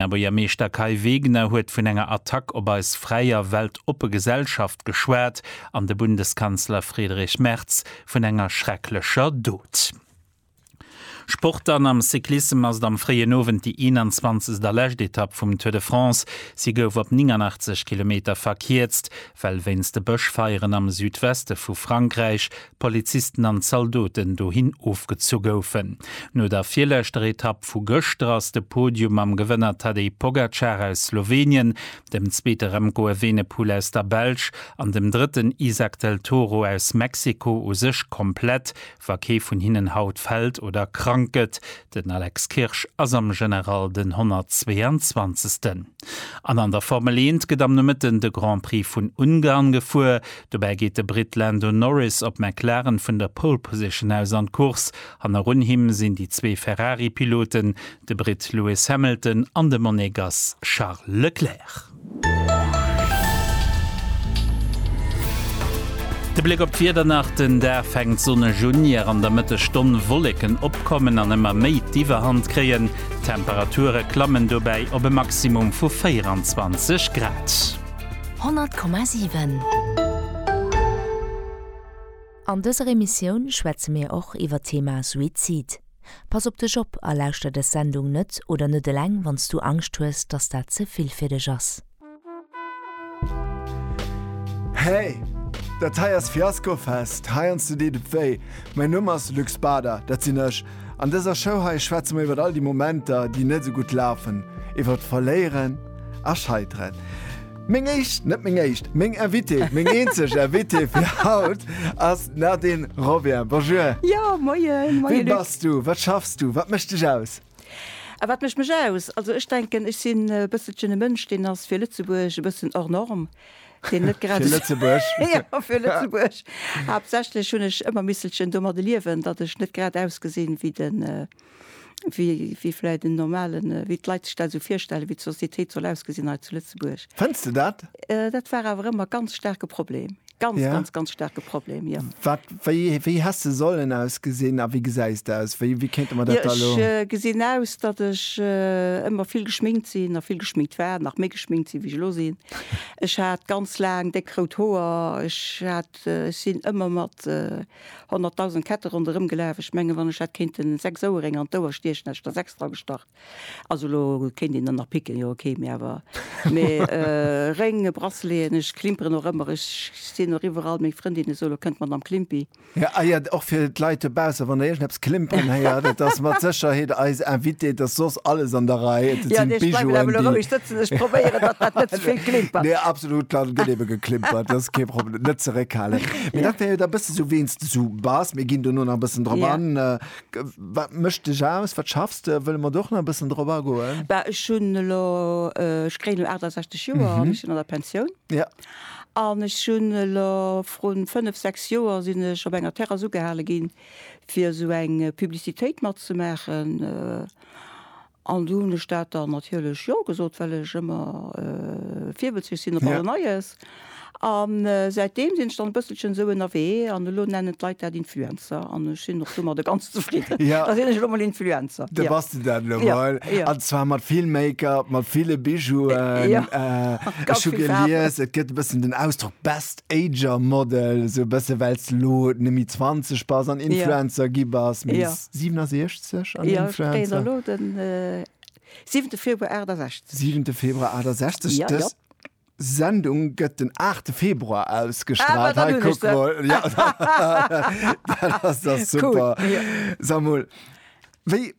Här Buergermeeschter Kai Wegner huet vun enger Attack op eis fräi a weltoppe Gesellschaft geschwat an de Bundeskanzler Friedrich Merz vun enger schrecklecher Dot. Sport An am Cyclissem ass et am fréien Owend déi 21 a lescht Etapp vum Tour de France. Si gouf op 89 Kilometer verkierzt, well wéinst de Bëschfeieren am Südweste vu Frankräich Polizisten an Zaldoten dohin ofgezu goufen. No der virleschter Etapp vu gëschter ass de Podium mam Gewënner Tadej Pogacar aus Slowenien, dem zweete Remco Evenepoel aus der Belsch an dem drëtten Izack del Toro aus Mexiko u sech komplett, wa kee vun hinnen haut fält oder krank gëtt. Den Alex Kirsch ass am General den 122. An an der Formel 1 gëtt am Nomëtten de Grand Prix vun Ungarn gefuer. Dobäi geet de Britt Lando Norris op McLaren vun der Pole Position aus an d'Course. Hannerun him sinn déi zwee Ferrari-Piloten, de Britt Lewis Hamilton an de Monegass Charles Leclerc. De Bléck op d'Wieder nach, Den Dag fänkt sonneg un, ier an der Mëttesstonn Wolleken opkommen an ëmmer méi d'Iwwerhand kréien. D'Temperature klammen dobäi op e Maximum vu 24 Grad. 100,7. An dëser Emissioun schwätze mir och iwwer d'Thema Suizid. Pass op dech op a lauschter des Sendung net oder net eleng wanns du Angscht hues dass dat ze vill fir dech ass. Hey! Dat hei ass Fiasco Fest, heiansdo deet et wéi. Mäin Numm ass Luc Bader, dat sinn ech. An dëser Show hei schwätze mer iwwert all déi Momenter, déi net esou gutt lafen, iwwert Verléieren a Scheiteren. Meng éischt, net meng éischt, meng Invitée, meng eenzeg Invitée fir haut ass d'Nadine Robien. Bonjour. Jo, moien. Moien, Luc. Wie bass du? Wat schaffs du? Wat mécht dech aus? A wat mécht mech aus? Also ech denken, ech sinn e bësselchen e Mënsch, deen ass fir Lëtzebuerg e bëssen hors norme, deen net grad Fir Lëtzebuerg? Jo, fir Lëtzebuerg. Haaptsächlech hunn ech ëmmer misselchen domadde liewen, datt ech net grad ausgesinn wéi de. wéi vläit en normalen, wéi d'Leit sech dat esou virstellen, wéi d'Sociétéit soll ausgesinn hei zu Lëtzebuerg. Fënns de dat? Dat war awer ëmmer e ganz staarke Problem, ganz, ganz, ganz staarke Problem, jo. Wat, wéi, wéi häss de sollen ausgesinn a wéi gesäis de aus? Wéi, wéi kéinte mer dat da elo? Jo, ech gesinn aus, datt ech ëmmer vill geschminkt sinn a vill geschminkt war, nach méi geschminkt sinn, wéi ech elo sinn. Ech hat ganz laang déck rout Hoer, ech hat, ech sinn ëmmer mat. 100.000 Ketten ronderëm gelaf. Ech mengen, wann ech hätt kéinten 6 Ouerénger an d'Ouer stiechen, hätt ech der 6 dra gestach. Also elo kéint een der nach picken, jo ok, mee awer. Mee Réng, Braceleten, ech klimperen och ëmmer. Ech sinn och iwwerall. Meng Frëndinne soen, Lo kënnt d'Madame Klimpi. Ah jo, och fir d'Leit dobaussen, wann der iergend eppes. d'Klimpern héiert, et ass mat Sécherheet eis Invitée, et ass soss alles an der Rei, et sinn d'Bijouen, déi. Nee, absolut, dann gëtt ebe geklimpert, dat ass kee Problem, net zeréckhalen. Mee dat wär jo da bësse sou, ween s de sou bass, mir ginn dono nach e bëssen drop an. Wat mécht dech aus, wat schaffs de? Wëlle mer do och nach e bëssen drop agoen. Bah, ech hunn elo, ech kréien elo 68 Joer an ech sinn an der Pensioun. Jo. An ech hunn elo vrun fënnef, sechs Joer sinn ech op enger Terrasse ugehale ginn, fir esou eng Publicitéit matzemaachen. An du hunn ech dat dann natierlech jo gesot, well ech ëmmer virbëlzlech sinn op alles Neies. An säitdeem sinn ech dann e bësselchen esou ënnerwee an elo nennen d'Leit dat Influencer an ech sinn och domadder ganz zefridden. Da sinn ech elo mol Influencer. Da bass de dat elo mol. An zwar mat vill Make-up, mat ville Bijouen. Ech hu gelies, et gëtt e bëssen den Ausdrock Best Ager Model sou bësse wells lo nëmi 20 bass an Influencer ja. gi bass mé ja. 67 an ja, Influencer. Lo den äh, 7. Februar 68. 7. Februar 68 ja, ja. Sendung gëtt den 8. Februar ausgestrahlt ah, hey, guck mal. Ja, das, das super cool. ja. Samuel, wéi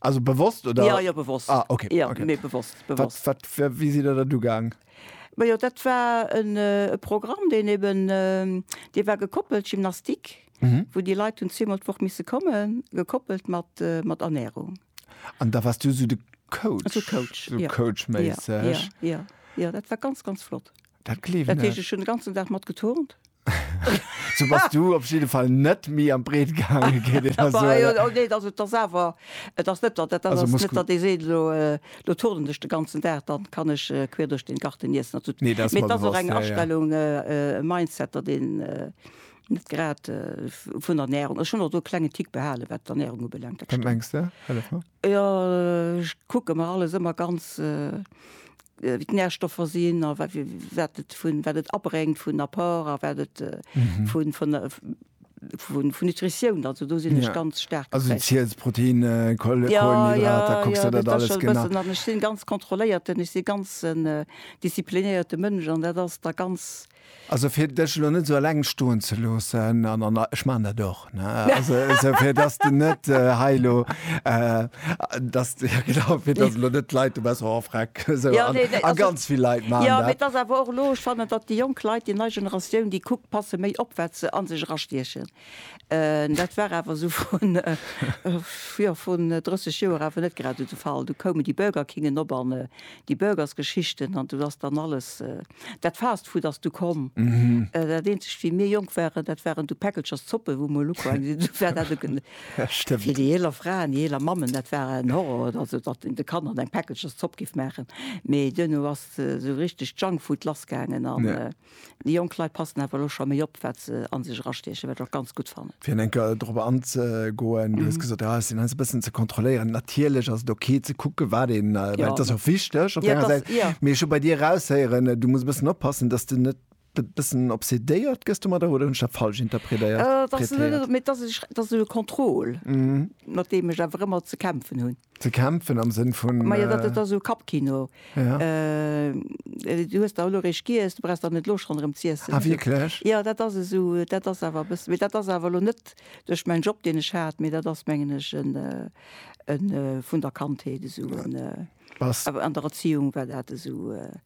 Also bewosst oder? Ja, ja, bewosst. Ah, okay. Ja, okay. Nee, bewosst, bewosst. Wat, wat, wie si der dat ugaang? Ma jo, dat war en äh, Programm, deen eben, äh, dee war gekoppelt, Gymnastik, mhm. wou déi Leit hunn zweemol d'Woch misse kommen, gekoppelt mat, äh, mat Ernährung. An da warst du so de Coach? So Coach, so ja. Coach-mässeg? Ja, ja, ja, ja, dat war ganz, ganz flott. Dat kleeft Dat heescht, net. ech hunn de ganzen Dag mat geturnt. Sou bass du op jidde Fall net méi an d'Breet gaangen, kéint een da Bah, soen. jo, oh nee, et ass, et ass awer, et ass net, dat ass Also net, Muskel. datt ee seet, elo, elo turnen ech de ganzen Dag, dann kann ech queer duerch den Garten niessen an esou. Nee, dat ass Mee mer et ass och bewosst, eng ja, ja. Astellung, e Mindset, datt een net grad vun der Ernärung, ech hunn och do e klengen Tick behalen, wat d'Ernärung ubelaangt, dat Wat stimmt. mengs de? Hëllef mer. Jo, ech kucke mer alles ëmmer ganz, wéi d'Närstoffer sinn a wat wat et vun, wat et abréngt vun Apport a wat et vun, vun, vun, vun Nutritioun. Also do sinn ech ganz staark geprägt. Also ziels Proteine, Kohlenhydrater, kucks der dat alles genau? Jo, jo, jo, dat ass scho e bëssen. An ech sinn ganz kontrolléierten, ech si ganz en disziplinéierte Mënsch an dat ass da ganz. Also fir dech elo net sou eleng stoen ze loossen, an an ech maachen dat och, ne, also esou fir dass de net hei elo, dass de, jo genau, fir dass elo net d'Leit, du bass och ervreckt, esou, a ganz vill Leit maachen dat. Jo, mee et ass awer och elo, ech fannen, datt déi jonk Leit, déi nei Generatioun, déi kuckt, passe méi op wat se a sech erastiechen. Dat war awer esou vrun, jo, vrun 30 Joer awer net grad esou de Fall. Du koumen déi Burger Kingen op an déi Burgersgeschichten an do ass dann alles, dat Fast Food ass du komm. Dat eenzegt, wéi mir jonk waren, dat waren du Päckelchers Zoppen, wou mer elo quasi gesinn hunn, wat dat do, fir déi eeler Fraen, déi eeler Mammen, dat war en Horror, also datt een de Kanner eng Päckelchers Zopp géif maachen. Mee duerno ass esou richteg Junk Food lassgaangen an. Déi jonk Leit passen awer elo scho méi op, wat se a sech erastiechen, wat ech och ganz gutt fannen. Fir eng Kéier dorop anzegoen, Du hues gesot, jo, ech sinn eis e bëssen ze kontrolléieren. Natierlech ass et ok ze kucken, wat een, well et ass och wichteg op der enger Säit. Mee ech hu bei dir eraushéieren, du muss e bëssen oppassen, datt s de net e bëssen obsedéiert gëss domadder. Oder hunn ech dat falsch interpredéiert? Et ass net, mee et ass e, et ass e Contrôle, mat deem ech awer ëmmer ze kämpfen hunn. Ze kämpfen am Sënn vun. Majo, dat ass da sou Kappkino. Ja. Du hues der elo eréischt giess, du brauchs der net elo schonn erëm z'iessen. Ah, wierklech? Jo, dat ass esou, dat ass awer e bëssi, mee dat ass awer elo net duerch mäin Job, deen ech hat, mee dat ass, mengen ech, en, en vun der Kandheet esou en, Bass. An der Erziehung war dat esou.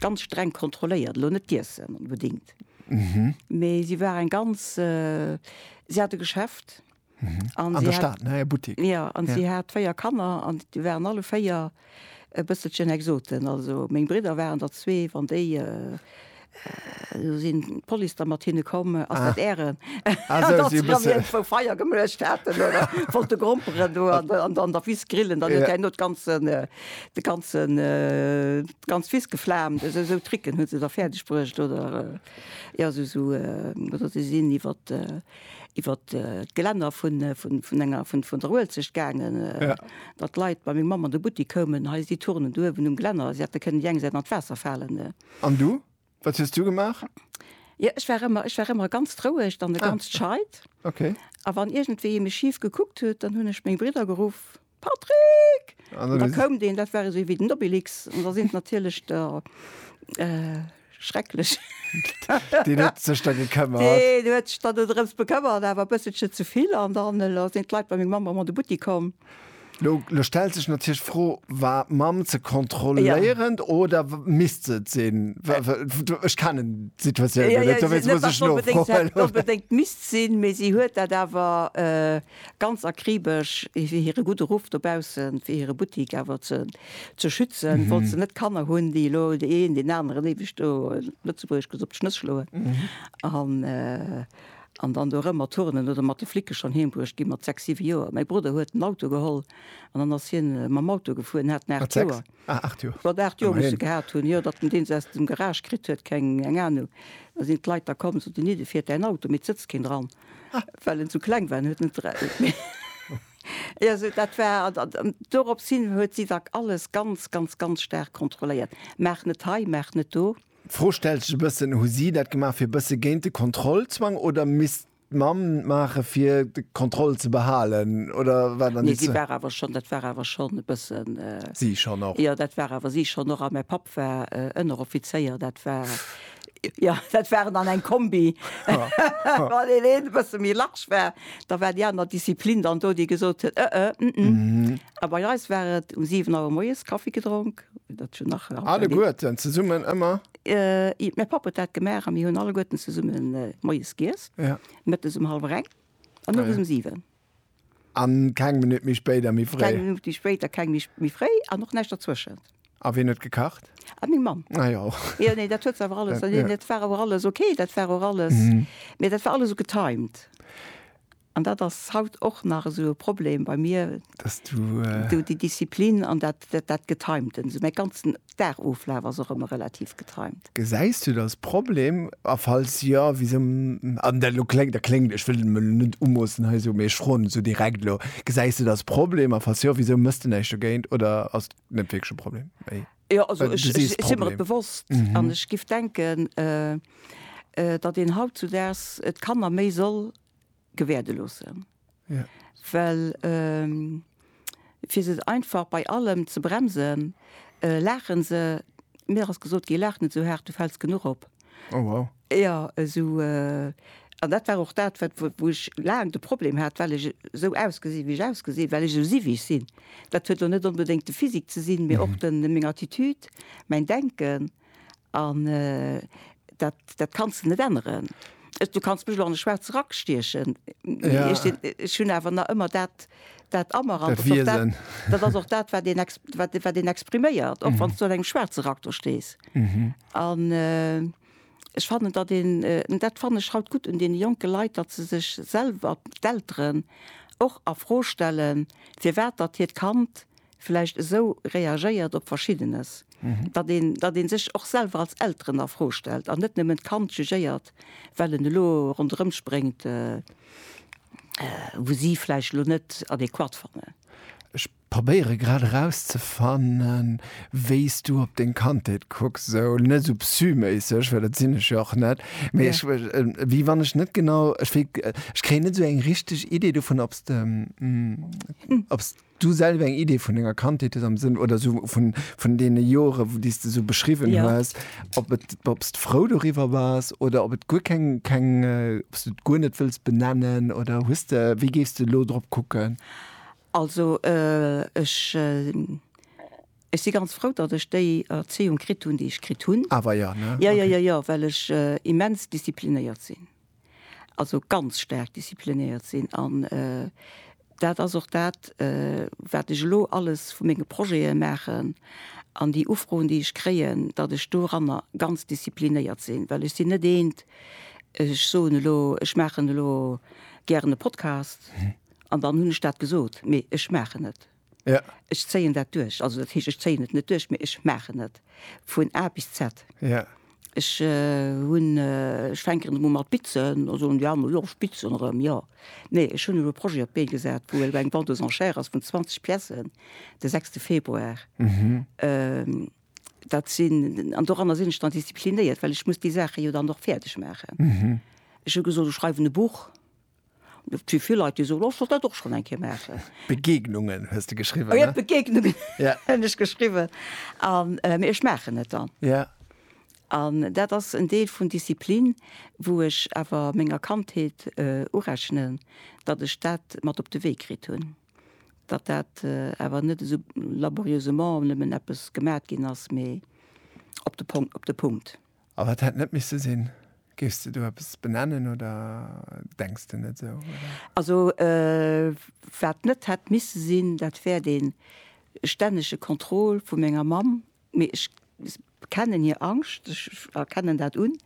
ganz streng kontrolléiert, elo net d'Iessen onbedingt, mee si war eng ganz, si hat e Geschäft an si hat, jo, an si hat véier Kanner an déi waren alle véier e bësselchen Exoten. Also meng Bridder waren der zwee, wann déi, elo sinn d'Police da mat hinne komm, ass dat Ären, datt si dann iergendwou Feier gemuecht haten oder wollte gromperen do an der Wiss grillen, dann huet hien elo d'ganzen De ganzen, d'ganz Wiss geflaamt, esou, esou Tricken huet se da fäerdeg bruecht, oder, jo, esou, esou, oder si sinn iwwer, iwwer d'Gelänner vun, vun, vun enger, vun, vun der Uelzecht gaangen, datt d'Leit bei meng Mamm an de Buttik koumen, hei si d'Turnen do uewen um Gelänner, si hätte kënnen déi eng Säit an d'Waasser falen. An du? Wat hues du gemaach? Jo, ech war ëmmer, ech war ëmmer ganz roueg an e ganz scheit. Okay. A wann iergendwéi ee mech schif gekuckt huet, dann hunn ech meng Bridder geruff, Patrick! An da koum deen, dat war esou wéi den Obelix. An da sinn natierlech der schrecklech. Deen huet sech da gekëmmert. Deen huet sech da do drëms bekëmmert, awer e bësselche ze vill. An dann elo sinn d'Leit bei meng Mamm ëmmer an de Buttik komm. Lo stellt sech natierlech d'Fro, War d'Mamm ze kontrolléierend oder misst se et sinn? Ech kennen d'Situatioun jo net, dowéinst muss ech nofroen. Se hätt et net onbedéngt misst sinn, mee si huet dat awer ganz akribesch, fir hire gudde Ruff dobaussen, fir hire Buttik awer ze schützen, wollt se net Kanner hunn, déi elo dee een deen aneren éiweg do, Lëtzebuergesch gesot, op d'Schnëss schloen. An dann do rëm mat Turnen oder mat de Flicke schonn heem bruecht gi mat sechs, siwe Joer. Mäi Brudder huet en Auto geholl an dann ass hien mam Auto gefuer. En hat en aacht Joer. Wat aacht Joer muss e gehat hunn, jo, datt en deen se aus dem Garage kritt huet, keng eng Anung. Da sinn d'Leit da komm, soten, Nidde, fiert däin Auto, mee et sëtzt keen dran, well en esou kleng war. En huet net Mee jo, sou dat war. An dorops hin huet si da alles ganz, ganz, ganz staark kontrolléiert. Maach net hei, maach net do. D'Fro stellt sech e bëssen, Hu si dat gemaach fir e bësse géint de Kontrollzwang oder misst d'Mamm et maache fir d'Kontroll ze behalen? Oder war dann déi zwee. Nee, dat war awer schonn e bëssen. Si schonn och. Jo, dat war awer si schonn och. A mäi Papp war Ënneroffizéier. Dat war, jo, dat war dann eng Kombi. Wann deen een e bësse méi large war, da war déi aner Disziplin dann do, déi gesot huet, ëh, ëh, ëh, ëh. A bei eis war et um siwen Auer moies Kaffi gedronk. Alleguerten zesummen ëmmer? Mäi Papp huet dat gemaach a mir hunn alleguerten zesumme moies giess, mëttes um hallwer eng an owes um siwen. A keng Minutt méi spéit a méi fréi? Keng Minutt méi spéit a keng Minutt méi fréi an och näischt dertwëschent. A wien huet gekacht? Meng Mamm. Ah jo. Jo, nee, dat huet se awer alles, dat war awer alles ok, dat war och alles, mee dat war alles esou getimed. An dat ass haut och nach esou e Problem bei mir, esou déi Disziplin an dat, dat Getimten. Esou mäi ganzen Dagoflaf ass och ëmmer relativ getimt. Gesäis du da e Problem? A falls jo, wisou? An dat elo kléngt, dat kléngt, ech wëll et mer elo net umoossen hei esou, mee ech froen esou direkt elo, gesäis du da e Problem? A falls jo, wisou méchs du näischt dogéint? Oder ass et net wierklech e Problem? Mee jo, also ech si mer et bewosst an ech géif denken, datt een hautzudaags d'Kanner méi soll, gewäerde loossen. Ja. Well ähm, fir se einfach bei allem ze bremsen, äh, lachen se mir ass gesot gi lach net so hart, du fällst genug op. Oh, wow. Ja eso äh, an dat war och dat wat wo wo ech laang de Problem hat, well ech sou ausgesi wéi ech ausgesi, well ech sou si wéi ech sinn. Dat huet lo net onbedéngt de Physique ze sinn, mee och den meng Attitude, mäin Denken. An dat, dat kanns de net änneren. Du kanns mech elo an de schwaarze Rack stiechen, ech hunn awer nach ëmmer dat, dat a mer. An dat Wiesen. Dat ass och dat, wat een, wat, wat een expriméiert, och wann s du an engem schwaarze Rack do stees. An ech fannen, datt een, an dat fannen ech haut gutt un deene jonke Leit, datt se sech selwer, d'Elteren, och a Fro stellen, firwat datt hiert Kand vläicht esou reagéiert op Verschiddenes, datt een, datt ee sech och selwer als Elteren a Fro stellt an net nëmmen d'Kand jugéiert, well en elo ronderëm spréngt, wou si vläicht elo net adäquat fannen. Ech probéiere grad erauszefannen, wéi s du op deng Kandheet kucks, esou net esou psy-méisseg, well dat sinn ech jo och net, mee ech, wéi wann ech net genau, ech wéi, ech kréien net esou eng richteg Idee dovun, ob s de, ob s. Du selwer eng Idee vun denger Kandheet hues, am Sënn, oder esou vun, vun deene Jore, déi s de esou beschriwwen Ja. hues, ob et, ob s de frou doriwwer bass, oder ob et guer keng, keng, ob s du et guer net wëlls benennen, oder hues de, wéi géifs de elo drop kucken? Also, ech, ech si ganz frou, datt ech déi Erzéiung kritt hunn, déi ech kritt hunn. Awer, jo, ne? Jo, jo, jo, jo, well ech immens disziplinéiert sinn. also ganz staark disziplinéiert sinn. An dat ass och dat, wat ech elo alles vu menge Projete maachen an déi Ufroen, déi ech kréien, datt ech doranner ganz disziplinéiert sinn. Well ech sinn net eent, ech soen elo, ech maachen elo gären e Podcast an dann hunn ech dat gesot. Mee ech maachen et. Ja. Ech zéien dat duerch. Also dat heescht, ech zéien et net duerch, mee ech maachen et vun A bis Z. Ja. Ech hunn, ech fänken erëm u mat bitzen, da soen déi aner, jo ech bitzen erëm, jo. Nee, ech hunn elo e Projet op d'Bee gesat, wou elo eng Vente aux enchères ass vun 20 Piècen de sechste Februar. Dat sinn, an doranner sinn ech dann disziplinéiert, well ech muss déi Saache jo dann och fäerdeg maachen. Ech hu gesot, ech schreiwen e Buch. Et si vill Leit, déi soen, ech wollt dat och schonn eng Kéier maachen. Begegnungen hues de geschriwwen, ne? Jo, Begegnungen hunn ech geschriwwen. Mee ech maachen et dann. Ja. An dat ass en Deel vun Disziplin, wou ech awer menger Kandheet urechnen, datt ech dat mat op de Wee kritt hunn. Datt dat awer net esou laborieusement nëmmen eppes gemat ginn ass, mee op de Pong, op de Punkt. A wat hätt net misse sinn? Géifs de do eppes benennen oder denks de net esou, oder? Also wat net hätt misse sinn, dat wär dee stännege Contrôle vu menger Mamm. Mee ech kennen hir Angscht, ech erkennen dat un,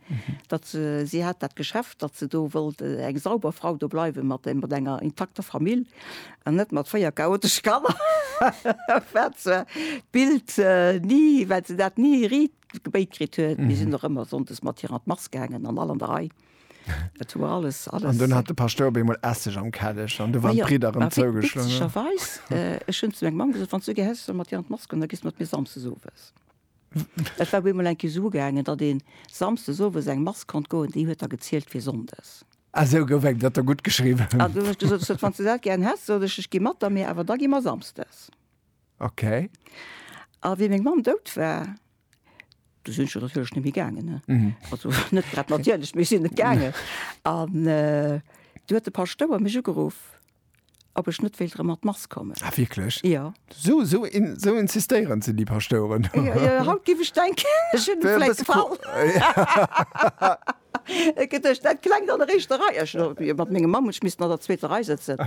datt se, si hat dat Geschäft, datt se do wollt eng sauber Frau do bleiwe mat enger intakter Famill an net mat véier chaotesche Kanner. Wat zwar d'Bild ni, wat se dat ni riit gebéit kritt huet. Mir sinn och ëmmer sonndes mat hir an d'Mass gaangen an all an der Rei. Et war alles, alles. An dunn hat de Paschtouer op eemol Esseg am Kelleg an du waren d'Bridder erëm zougeschloen. Witzegerweis, ech hunn zu menger Mamm gesot, wann s du gär häss, ech soll mat dir an d'Mass goen, da gees mat mir samsdes owes. Et war op eemol eng Kéier esou gaangen, datt ee samsdes owes an eng Mass konnt goen, déi huet da gezielt fir sonndes. Ah, esou gouf eng Blatter guttgeschriwwen. An dunn hunn ech gesot, wann s du dat gär häss, sot ech, ech gi mat der, mee awer da gi mer samsdes. Ok. A wéi meng Mamm dout war, du sinn ech jo natierlech net méi gaangen, also net grad natierlech, mee ech sinn net gaangen. An du huet de Paschtouer mech ugeruff, ob ech net wéilt erëm an d'Mass kommen. Ah wierklech? Jo. Sou, sou, sou insistéierend sinn déi Paschtoueren. Jo, jo, haut géif ech denken, ech hunn vläicht gefall. Et gëtt duerch dat klengt an der éischter Rei. Ech elo jo mat mengem Mann hunn ech missen an der zweeter Rei sëtzen.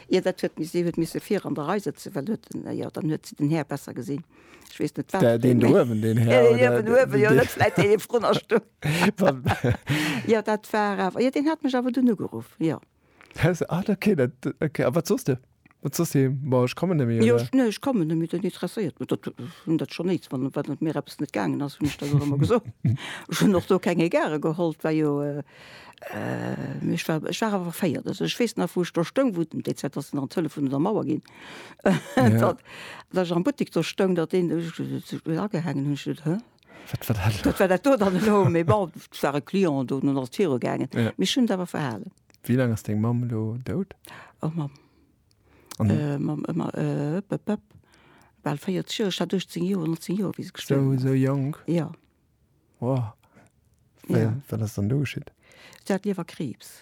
Ier dat huet mis, si huet misse vir an der Rei sëtzen, well huet den, jo, dann huet si den Här besser gesinn. Ech weess net, wat. Dä, deen do uewen, deen Här oder. Deen uewen, uewen, jo, net vläit dee vrun a Stung. Jo, dat war awer, jo, deen hat mech awer dunn ugeruff, jo. Ah, dat okay, dat okay. A wat soss de? Wat soss de? Bon, ech kommen net méi, oder? Jo, ech, nee, ech kommen net méi, dat interesséiert mech, dat, hunn dat schonn nees, wann, wann et mir eppes net gaangen ass, hunn ech dat och ëmmer gesot. Ech hunn och do keng Egarë geholl, 't war jo, mee ech war, ech war awer féiert. Also ech weess nach, wou ech do stoung, wou den DZ ass nach an d'Hëllef vun der Mauer ginn, datt, datt ech am Buttek do stoung, datt deen, ech hunn dat agehaangen, hunn ech gesot, hä? Wat war dat? Wat war dat do dann elo? Mee bon, et war e Client do, nun ass et viru gaangen. Ja. Mee ech hunn et awer verhalen. Wéi laang ass deng Mamm elo dout? Oh Mamm. An. Äh, Mamm, äh, Mamm, äh, bep, bep, bal 40 Joer. Ech hat 18 Joer, 19 Joer, wéi se gestuerwen Sou, ass. sou jonk? Ja. Wow. Ja. Wat ass dann do geschitt? Si hat Liewerkriibs.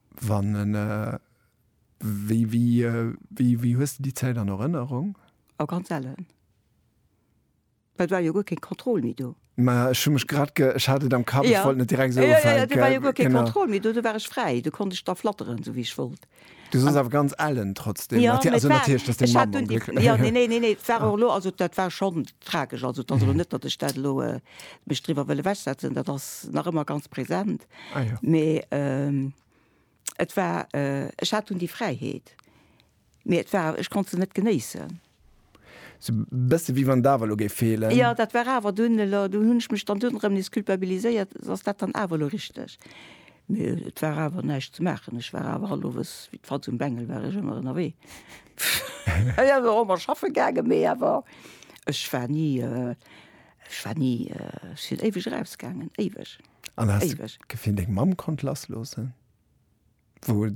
Wann en wéi wéi wéi hues de déi Zäit an Erënnerung? A ganz ellen. Well et war jo guer keng Kontroll méi do. Mä ech hu mech grad ge, ech hat et am Kapp, ech wollt net direkt esou ufänken. Jo, jo, jo, do war jo guer keng Kontroll méi do, do war ech fräi, do konnt ech da flatteren esou wéi ech wollt. Du soss awer ganz ellen trotzdem, natierlech, also natierlech, dass deng Mamm am Gléck. Jo, mä et war, ech hat, jo, neen, neen, neen, neen, et war och elo, also dat war schonn tragesch, also et ass elo net, datt ech dat elo mech driwwer wëll ewechsetzen, dat ass nach ëmmer ganz präsent. Ah ja. Mee ähm, et war, äh, ech hat dunn déi Fräiheet, mee et war, ech konnt se net genéissen. Sou bësse wéi wann d'Awer elo géif feelen. Ja, dat war awer dunn elo, dunn hunn ech mech dann dunn erëm nees culpabiliséiert, ass dat dann awer elo richteg? Mee et war awer näischt ze maachen, ech war awer all Owes, wéi d'Falz um Bengel, war ech ëmmer ënnerwee. Ech ass och ëmmer schaffe gaangen, mee awer ech war ni, äh, ech war ni, äh, ech sinn éiweg erausgaangen, éiweg. An hast Éiweg. du Gefill, deng Mamm konnt lassloossen? Wou,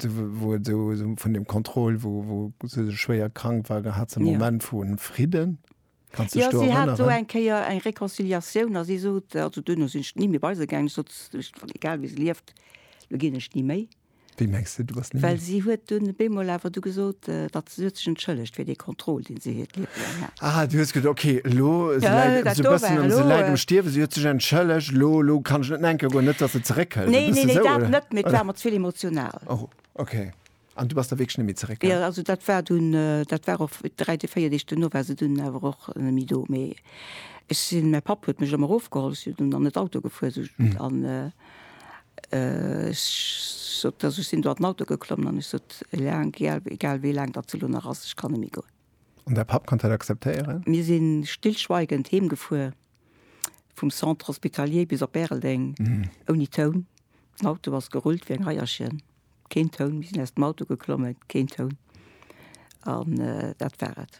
wou et sou, sou vun dem Kontroll, wou, wou se sou schwéier krank war, da hat se e Ja. Moment vu Fridden. Kanns du Ja, dech do si hat do erënneren? eng Kéier eng Reconciliatioun a si sot, also duerno sinn ech ni méi bei se gaangen, ech sot, s- Egal wéi se lieft, elo ginn ech ni méi. Wéi mengs de, du bass ni méi? Well si huet dunn op eemol awer du gesot, datt se huet sech entschëllegt fir dee Contrôle, dee se hiert Liewe laang hat. Ah, du hues gesot, okay, elo, se Ja, läit dat esou e do bëssen war am, se elo. läit am Stierwen, si huet sech entschëllegt, elo, elo kann ech net nenke goen, net datt se zeréckhëlt. E Nee, nee, bësse nee, esou, dat oder? net, mee et war mer ze vill emotional. Oh, okay. An du bass da wierklech net méi zeréck, Ja, hä? also dat war dunn, dat war och dräi Dee, véier Deeg duerno war se dunn awer och net méi do. Mee ech sinn, mäi Papp huet mech ëmmer erofgeholl, ech sinn dunn an et Auto gefuer, sou, an, Ech sot, also ech sinn do an den Auto geklomm an ech sot, Eleng, egal wéi laang datt se elo nach ass, ech kann net méi goen. An däi Papp konnt dat akzeptéieren? Mir si stillschweigend heemgefuer, vum Centre Hospitalier bis op Bäreldeng, ouni Toun. Den Auto ass gerullt wéi eng Eierchen, keen Toun. Mir sinn aus dem Auto geklommen, keen Toun. An dat war et.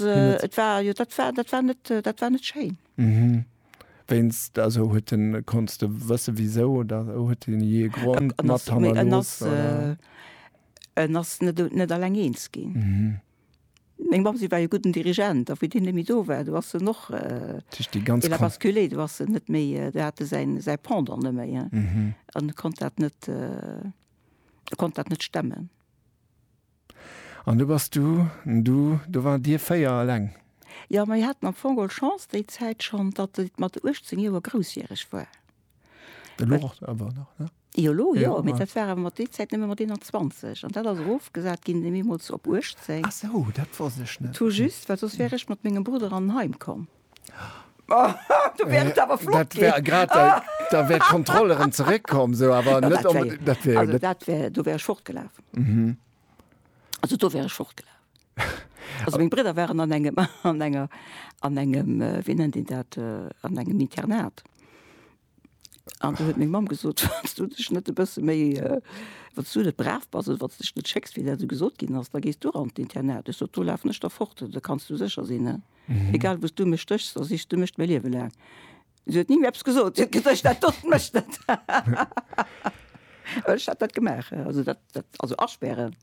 Et war jo dat war dat war net dat war net schéin. Wéinst also huet den konns de wësse wisou oder huet den jee e Grond mat hannerlooss oder? En ass net net alleng eens ginn. Meng Mamm si war e gudden Dirigent a wéi deen net méi do war do ass en och il a basculé do ass en net méi do hat e säin säi Pendant net méi an konnt dat net konnt dat net stemmen. An du bass du, du, do wart dir véier eleng? Jo, mir haten am Fong geholl Chance déi Zäit schonn, datt et mat 18 Joer groussjäreg war. Elo och awer nach, ne? Jo, elo jo, mee dat war awer mat déi Zäit nëmme mat 21. An dat ass erofgesat ginn deemools op 18. Ah sou, dat wosst ech net. Tout juste, well soss wär ech mat mengem Brudder an en Heim komm. Oh, du wärst awer flott Dat wär ginn. grad, da, da wär d'Kontroll erëm zeréckkomm, sou, awer Ja, net dat wär, onbedéngt, dat wär jo also net. dat wär, do wär ech fortgelaf. Also do wär ech fortgelaf. Also meng Bridder waren an engem, an enger, an engem, wéi nennt een dat, an engem Internat. An du huet meng Mamm gesot, wanns du dech net e bësse méi, wanns du net brav bass oder wanns du dech net schécks, wéi dat esou gesot ginn ass, da gees du an d'Internat. Ech sot, do lafen ech da fort, do kanns du sécher sinn. Egal wou s du mech stéchs, da sichs du mech mäi Liewe laang. Si huet ni méi eppes gesot, si huet gesot, dat dotzt mech net. Ech hat dat gemaach, also dat, dat, also aspären.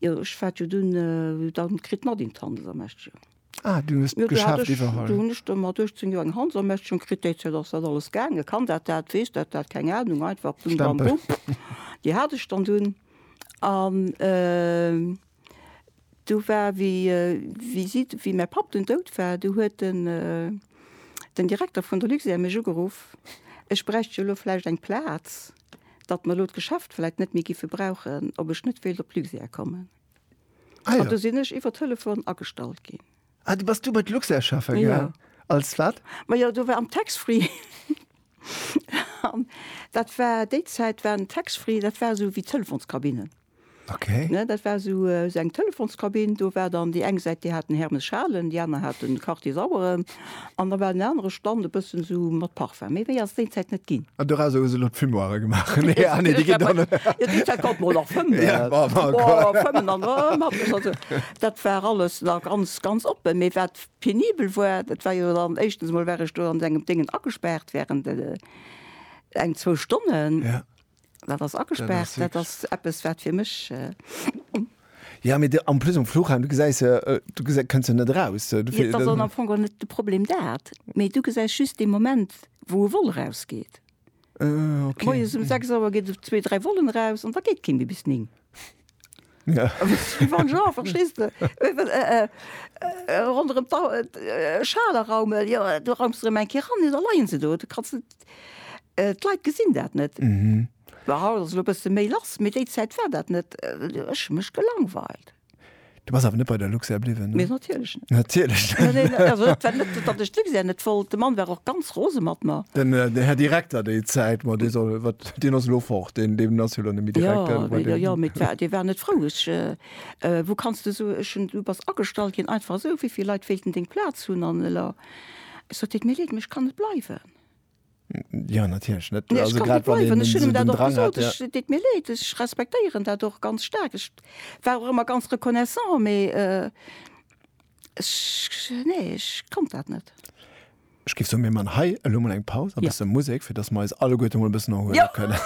Jo ech war jo dunn dann kritt mat een d'Handelsermächtegung. Ah du hues d'Geschäft iwwerholl. Dunn hunn ech do mat 18 Joer eng Handelsermächtegung kritt, déi Zäit ass dat alles gaangen, kann dat dat, weess dat dat, keng Ahnung, einfach bim bam bum. Déi hat ech dann dunn an du war wéi wéi si wéi mäi Papp dunn dout war, du huet den den Direkter vun der Luxair mech ugeruff, ech bräicht jo elo vläicht eng Plaz datt mer elo d'Geschäft vläit net méi géife brauchen, ob ech net wéilt op Luxair kommen. Ah, ja. An do sinn ech iwwer Telefon agestallt ginn. Ah, du bass du bei d'Luxair schaffen gaang? Ja. Als wat? Ma jo, do war am Tax-Free. Dat war, déi Zäit war den Tax-Free, dat war esou wéi d'Telefonskabinen. Okay. Ne, dat war esou esou eng Telefonskabinn, do war dann déi eng Säit, déi hat den Hermes Schalen, déi aner hat den Quartier Saueren an da war den anere Stand e bëssen esou mat Parfum. Méi wéi ass déi Zäit net ginn. An dorausser hu se elo d'Fumoire gemaach. Nee, ah nee, déi ginn dann. Jo, déi Zäit konnt mer och nach fëmmen. Ja, ma ma ma. Boah, fëmmen an erëm hat mech also. Dat war alles nach ganz, ganz oppen. Mee wat penibel war, dat war jo dann, éischtens emol war ech do an engem Déngen agespaart während eng, zwou Stonnen. Ja. Dat ass agespaart, dat ass eppes wat fir mech. Ja mee am plus um Fluchheim du gesäis se du gesi kënns se net eraus. Dat ass am Fong och net de Problem dat, mee du gesäis just dee Moment wou e Vol erausgeet. Moies um 6 Auer geet zwee, dräi Vollen eraus an da geet kee méi bis 9. Ja. Wie wann Jean, verstees de? Ronderëm d' Dau, Schaler Raumel, jo, do raumst de rëm eng Kéier ran, da leien se do, do kanns de, d' Leit gesinn dat net. Haut ass elo e bësse méi lass, mee déi Zäit war dat net, ech hu mech gelangweilt. Du bass awer net bei der Luxair bliwwen? Mee natierlech net. Natierlech net. Neen, neen, also dat war net, datt ech d'Luxair net wollt. De Mann war och ganz rose mat mer. Den, den Här Direkter déi Zäit, ma dee soll, wat, deen ass elo fort, deen, deen ass jo elo net méi Direkter. Jo, jo, jo, mee d'war, dee war net frou. Ech, wou kanns de esou, ech hunn, du bass agestallt ginn, einfach esou, wéi vill Leit wéilten deng Plaz hunn? An elo, ech sot, deet mir leed, mee ech kann net bleiwen. Ja natierlech net. Nee, also grad wann den Schulden dat dran hat. Ech deet mir leed, ech respektéieren dat och ganz staark. Ech war och ëmmer ganz reconnaissant, mee ech nee ech konnt dat net. Ech géif soen, mir man hei elo mol eng Paus, e bësse Musek, fir dass mer eis alleguerte mol e bëssen erhuele kënnen.